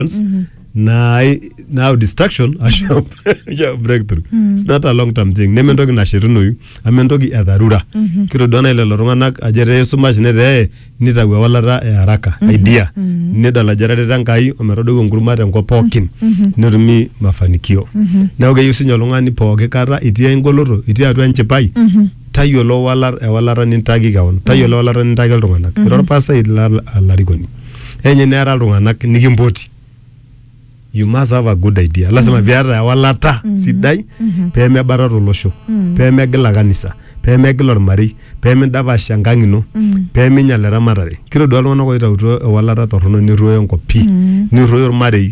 distractions mm-hmm. na now distraction asha asha breakthrough mm-hmm. it's not a long term thing neme entoki nashetunoyu ama entoki e dharura mm-hmm. kitodua nai lelo tung'anak ajo etaa esumash netaa nitau ewalata e haraka mm-hmm. idea mm-hmm. nedol ajo etareta enkai ometodou enkurma tenkop pookin mm-hmm. netumi mafanikio mm-hmm. neeku keyieu sinye oltung'ani pooki kata itii engoloto itii atua enchipai mm-hmm. tayiolo ewalata nintaaki kewon tayiolo ewalata nintaaki iltung'anak ira orpasai ira olarikoni enye neeta iltung'anak nikimpoti you must have a good idea lasima piata ewalata sidai pemebatata olosho pemegila kanisa pemegila ormarei pemindapash enkang ino peminyal eramatare kitodua iltung'anak oitautuo ewalata torrono nerruoyo enkop pii nerruoyo ormarei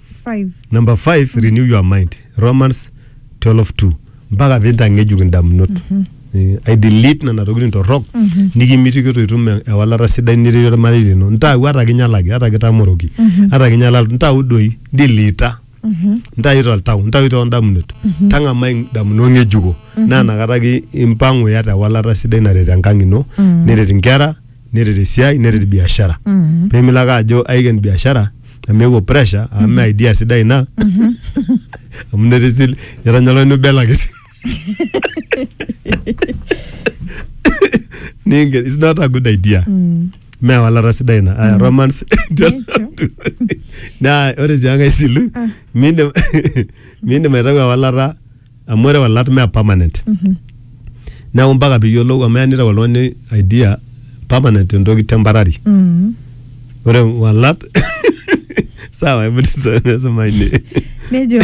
5 number 5 renew your mind romans 12:2 mpaka pintang'ejuk indamunot Eh, ai delete nena tokitin torrok nikimitiki itu itum e- ewalata sidai niretie ormarei lino ntau ata kinyalaki ata kitamoroki ata kinyala ntau doi dilita ntayu toltau ntayu toondamunot tang'amai indamunot ng'ejuko naa nakata ki impang'u iyata ewalata sidai naret enkang ino neret inkera neret esiai neret biashara Mhm. pemilo ake ajo aiken biashara amu eewuo pressure amu me idea sidai ina amu netisil etanya oltung'ani obelaki Ninken- it's not a good idea Mm. me ewalata sidai ina aya romance naa ore sii enkae silu miindim miindim aitau ewalata amu ore olat mee permanent neeku mpaka piyiolou amu eya nitau oltung'ani idea permanent entoki temporary Mm. ore walat sawa hebu tusome soma ine nejo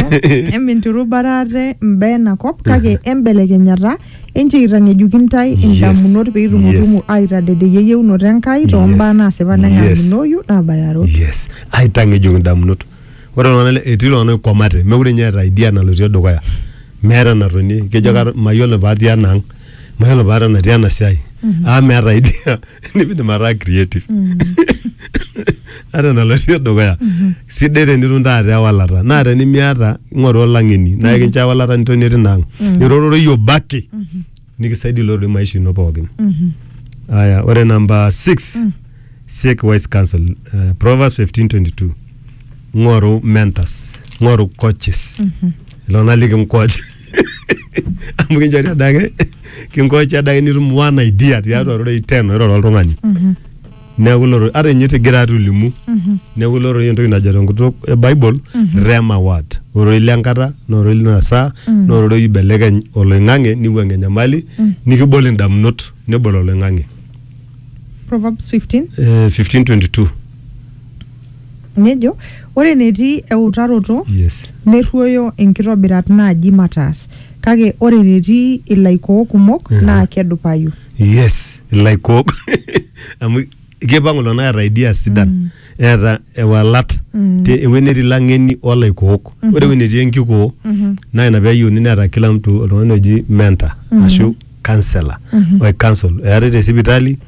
eminturubara ate mbaa ena kop kake embelekenyata enche eitang'ejuki ntae Yes. indamunot pee itumutumu aitadedeyie eyieunoto Enkai too Yes. mbaa naasipa Yes. neng'amunoyu naabayaro yes aitang'ejuk indamunot ore iltung'anak le- etii iltung'anak oikwamate mekure ninye eeta idea nalotie dukuya meeta enatonie kejo kata mayiolo paatii ena ang mayiolo paata natii ena siai aa meeta idea nimidim ataa creative ata enalotie dukuya sidai tenitum taata ewalata naa tenimiata ing'oru olang'eni naa ekincho ewalata nitonie tina ang irororoi obaki nikisaidia ilo doi maisha ino pookin aya ore namba 6 seek wise counsel uh, proverbs 1522 ng'oru mentors ng'oru coaches ilona likinkoch amu kinchori adake kinkoch adake nitum one idea tiatua rorei ten oiroro oltung'ani neeku ilo rorei ata ninye tigira atolimu neeku ilo rorei entoki najo tenkutuk e bible rema word ororei lenkata na ororei lina saa na ororei oibelekeny oloing'ang'e niwuang'ie enyamali nikibol indamunot nebol oloing'ang'e Proverbs 15 Eh, 1522 nejo ore enetii eutaroto yes nerruoyo inkitobirat naaji mataas kake ore enetii ilaikoo kumok Ehe. naa kedupayu yes ilaikook amu kipang kulo naa eeta idea sidan eeta ewalat te ewueji netii lang'eni olaikook ore ewueji netii enkikoo naa ina peeyieuni neeta kila mtu oltung'ani oji mentor ashu counselor oi counsel eetae te sipitali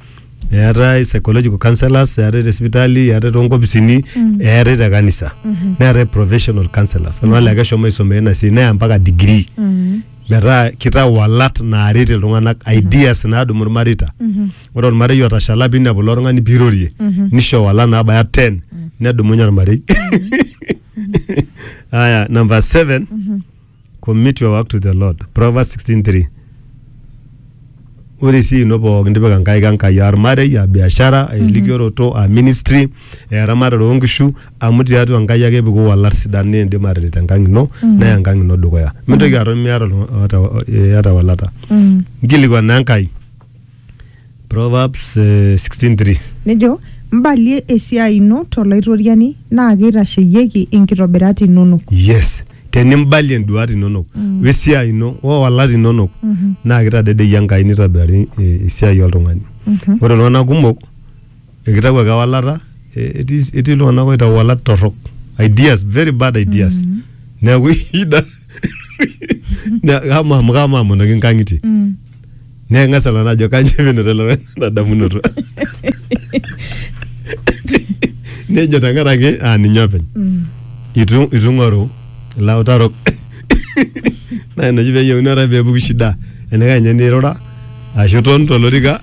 eetae psychological counsellors eetae te sipitali eetae tonkopisini eetae te kanisa neetae professional counsellors kuna naa keshomo aisomea ina siai neya mpaka degree metaa kitau walat naaret iltung'anak ideas naadumu irmareita ore ormarei otashala piinepu ilo tung'ani piirorie nisho walat naabaya 10 nedumunye ormarei aya number 7 commit your work to the lord proverbs 16:3 ore sii ino pookin tipika nkaik enkai aa ormarei aa biashara aa elikioroto aa ministry aa eramatare oonkishu amu tiatua enkai ake epiki iwalat sidan naa indim aataret enkang ino neya enkang ino dukuya mintoki aton miata oltung'ani oota iyata ewalata nkilikuana enkai Proverbs eh, 16:3 nejo mbalie esiai ino tolaitoriani naa keitasheyieki inkitobirat inonok yes tenimbalie nduat inonok mm. wesiai ino owalat inonok mm -hmm. naa kitadedeyie enkai nitobirari e, esiai oltung'ani mm -hmm. ore iltung'anak kumok ekitau ake ewalata e, etii etii iltung'anak oitau walat torrok ideas very bad ideas mm -hmm. neeku ida kama amu kama amonoki nkang'itie mm. Naa eng'as alo ajo kaji pinoto ele tung'ani ena damunoto. Nejo tenkaraki aa ninye openy. Itu itu ing'oru ilautarok. Naa ina oshi peyieuni ore ake peepuku shida enaikash ninye nirura ashu iton tolorika.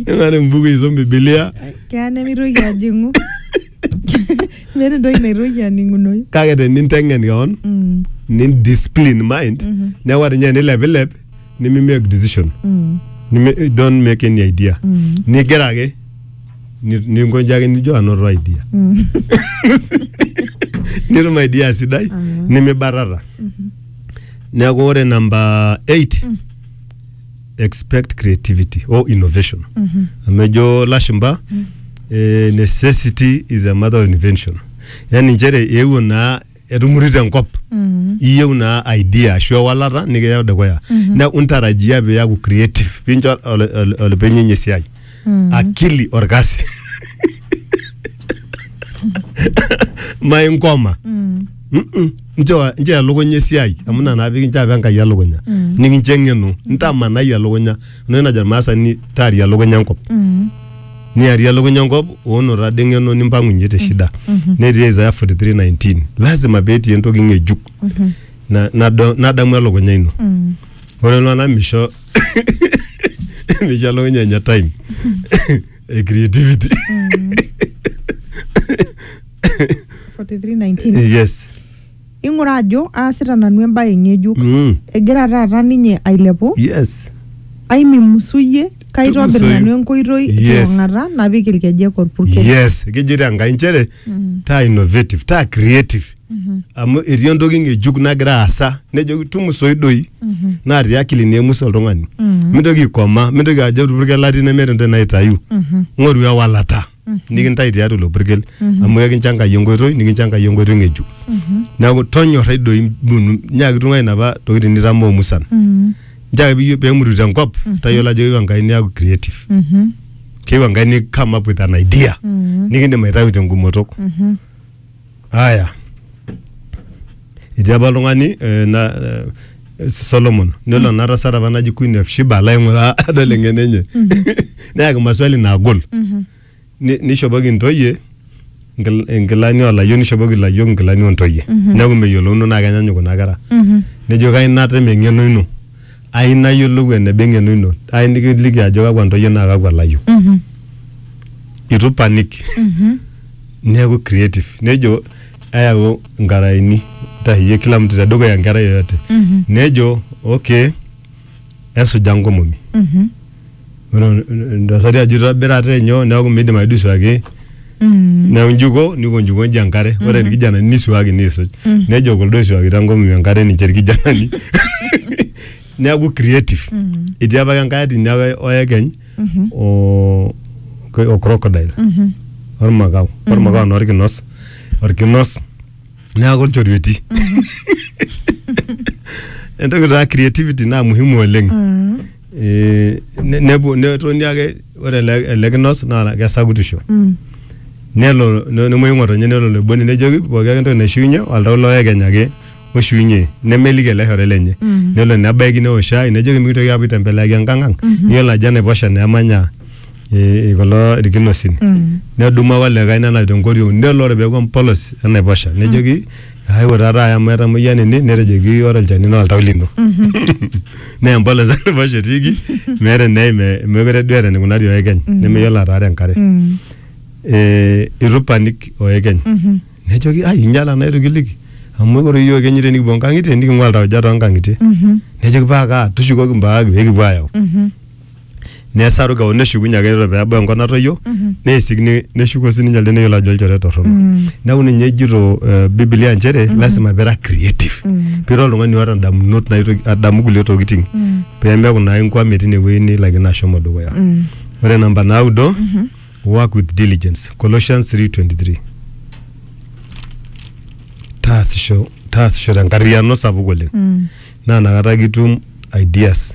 Ning'oru embuku aisum bibilia. Keya nemitoki ajing'u. meeta entoki naitoki aning'unoyu kake teninteng'en keon Mm, nindiscipline mind Mhm. neeku ata ninye enilepilep nimimake decision mm, Nimi- don't make any idea mm, nigira ake ni- ninkonji ake nijo anoto idea mm. nitum idea sidai Amen. nimibatata neeku ore namba 8 expect creativity or innovation amu ejo lashumba eh, necessity is a mother of invention yani nchere eewuo naa etumurito enkop iyieu naa idea ashu ewalata nikiyau dukuya neeku intarajia piaku creative pincho ol- ol- olopeny enye esiai akili orkasi mainkoma Mm-mm. nchoo nchoo elukunya esiai amu ina naa pikincho apa enkai elukunya nikincho eng'eno ntamanai elukunya enoshi najo irmaasani taaria elukunya enkop niarie elukunya enkop oono tade eng'eno nimpang'unye te shida netii Isaiah 43:19 lazima peetii entoki ng'ejuk na- nado- nadamu elukunya ino ore iltung'anak misho Nishalo nyanya time. Eh, creativity. 4319 Eh, Yes. ing'ura ajo aasita nanu embaye ng'ejuk Mm. egira taata ninye ailepu Yes. aimimusuyie kaitobir Tugusoyu. nanu enkoitoi Yes. tiong'ata napik ilkejek orpurkel Yes. Kejoito Enkai nchere taa innovative, taa creative. amu etii entoki ng'ejuk nagira aasa nejoki tumusoi doi naa te akili naa emusa oltung'ani mintoki aikoma mintoki ajo orpurkel latii nemeeta entoki naitayu ng'oru ewalata nikintai tiatua ilo purkel amu ekinchangayie enkoitoi nikinchangayie enkoitoi ng'ejuk neeku tonyorrai doi mbunu nyaaki tung'ai inapa tokitin nitamoo musan nchoo ake pemuru tenkop tayiolo ajo keyieu Enkai niaku creative keyieu Enkai ni come up with an idea nikindim aitayu tenkumoto. Aya. Etii apa oltung'ani eh, na, eh, Solomon nelo ena tasat apa naji Queen of Sheba alo aing'uraa adol eng'eno enye neyaki maswali naagol Ni- nishopoki intoyie nkil- inkilani olayiok nishopoki ilayiok inkilani ontoyie neeku meyiolouno naa kenyanyuk kuna kera nejo kai natem eng'eno ino ai nayiolou eneba eng'eno ino ai nikiliki ajo kakwa ntoyie naa kakwa layiok Mhm. itu panic Mhm. neeku creative nejo ayau nkaraeni ntaheyie kila mtu tedukuya enkerai yoyote Mhm. nejo okay esuja nkomomi Mhm. ore intasati ajo itobira ate nyoo neeku miidim ake duo aisuaki neeku njuko niko njuko nji enkare ore irkijanani nisuaki niisuj nejo kuldo oisuakita nkomomi enkare ninche irkijanani neeku creative etii apake enkae ati ina oe- oekeny o o crocodile ormakau ormakau naa orkinos orkinos neeku ilchorueti entoki taa creativity naa muhimu oleng Eh, ne- nepuo netoni ake ore ele ele kinos naa kesakutisho Mm. nelo ne- nemuoyu ng'otonye nelo loiboni nejoki pooki ake entoki naishiunye oltau loekeny ake oshiunye nemeliki ele shore lenye Mhm. nelo nebaiki neosh shai nejoki mikitoki apuo aitembeleaki enkang ang Mhm. niyiolo ajo enaiposha naa emanya eh, kulo irkinosin Mm. nedumu ake olikae nenap tenkoriong nelo ore peeku empolos enaiposha nejoki Aewuo taata aya amu etamoyia nini netejoki ore olchani naa oltau lino. Naa empolos enaiposha etiiki meeta eneim eh, meekure duo eeta eneikunari oekeny nemeyiolo ataara enkare. Eh, eitu ipanik oekeny nejoki ai inyiala naa eitu kiliki amu ore iyiook ekenyu tenikipuo inkang'itie niking'ua iltauja toonkang'itie. Nejoki paa kaa tushukoki mbaak peekipuo aayau. nesaru kewon neshukunye ake ore peebau enkop natoyio neisik ne- neshuko sininye elde neyiolo ajo olchore torrono neeku ninye ejito eh, bibilia nchere lasima pira creative pira oltung'ani oota ndamunot naitoki adamu kulie tokiting pemeeku naa inkwame tinewueji nilakino ashomo dukuya ore namba naudo work with diligence colossians 323 taasisho taasisho tenkarriyiano sapuk oleng naa nakata kitum ideas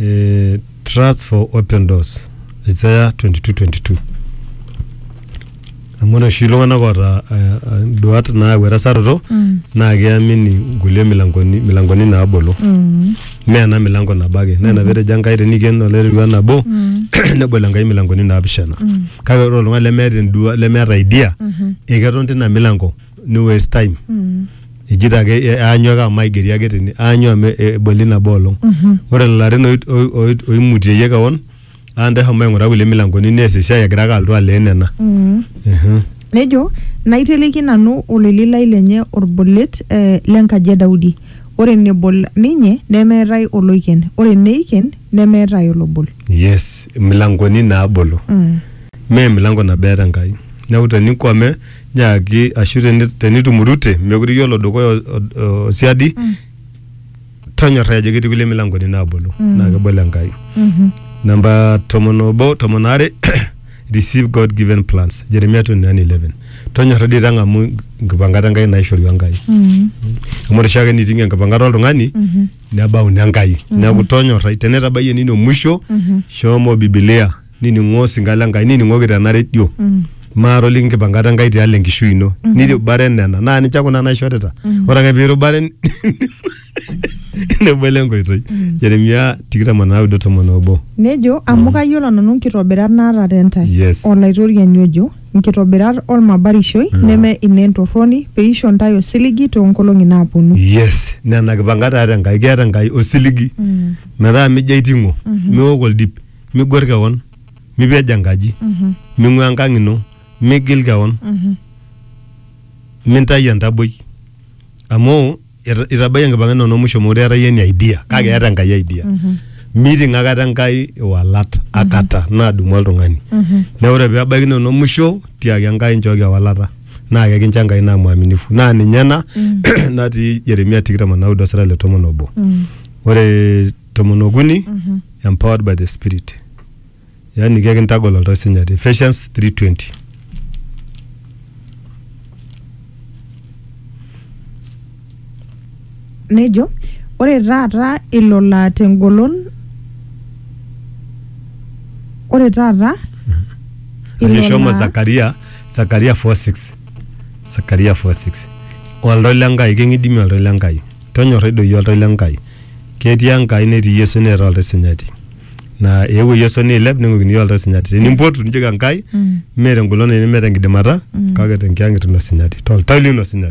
eh, trust for open doors isaya 2222 amu ore oshi iltung'anak oota eh, eh, duat naayau erasaroto Mm. naa keamini nkulie milangoni, milangoni naabolo Mm. mee ena milango nabo ake naa ina petejo enkai teniken olairriwa nabo Mm. nebol enkai milangoni naapishana Mm. kake ore oltung'ani lemeeta endua lemeeta idea Mhm. eketon tina milango ni waste time ijito ake e- aanyu ake amu aigeri ake tene aanyu amu e- eboli nabo olong ore lelo arin oi- oi- oi- oimutieyie kewon aa ntae homo aing'ura kulie milankoni nees esiai egira ake alotu aleen nena Mm. Ehe. nejo naiteleki nanu oleli lai lenye olbolet eh, lenkaji e daudi ore nebol ninye nemeetae oloiken ore neiken nemeetae olobol yes milankoni naabolo mm. mee milango nabo eeta enkai neeku tenikwame nyaaki ashu teni- tenitumurute mekure iyiolo dukuya o- o- o siadi tonyorrai ajo ketii kulie milangoni naabolo naa kebol enkai namba tomon obo tomon aare receive god given plans jeremia 29:11 tonyorra dii tang'amu nkipangat enkai naishorua enkai amu ore oshiake niting'ie enkipangata oltung'ani nebau nenkai neeku tonyorrai tenetabayie nino musho shomo bibilia nining'o osinka le Nkai nining'oki tena redio maatoliki nkipankata Enkai tialo enkishui ino nirubare nena naa ninche kuna naishorita ore ake piirubare nebolo enkoitoi Jeremia tikitam o naudo tomon obo Nejo, amu kayiolo nanu nkitobirat naata te ntae, Yes. Olaitoriani ojo, nkitobirat olmabarishoi neme inentorroni, peisho ntae osiligi too nkolong'i naaponu. yes nena kipankat eeta Enkai keeta Enkai osiligi metaa mijo aiting'o miok oldip migwer kewon mipej enkaji ming'ua enkang ino migil kewon mintayu entaboi amu ita- itabayie enkipang'a inono musho mekure eeta iyie any idea kake eeta enkai idea miting akata enkai iwalat akata nadumu oltung'ani neeku ore pebaiki inono musho tiaki enkai nchooki ewalata naa kekincho enkai naa mwaminifu naa ninye ena natii Jeremia tikitam onaudo sira le tomon obo ore tomon okuni empowered by the spirit yaani kekintagol oltau sinyati Ephesians 3:20 nejo ore taata ilo laa tengolon ore taata ilo ajo shomo laa- Zakaria Zakaria 4:6 Zakaria 4:6 oltau le Nkai keng'idimi oltau le Nkai Tonyorrai doi oltau le Nkai. Ketii Enkai netii Yesu neeta oltau sinyati. Naa eewuo Yesu neilep ning'uikini iyiook oltau sinyati. Tenimpotu nijoki Enkai mee tengolon ino mee tenkidimata kake tenkiang'et ino sinyati toltau lino sinyati.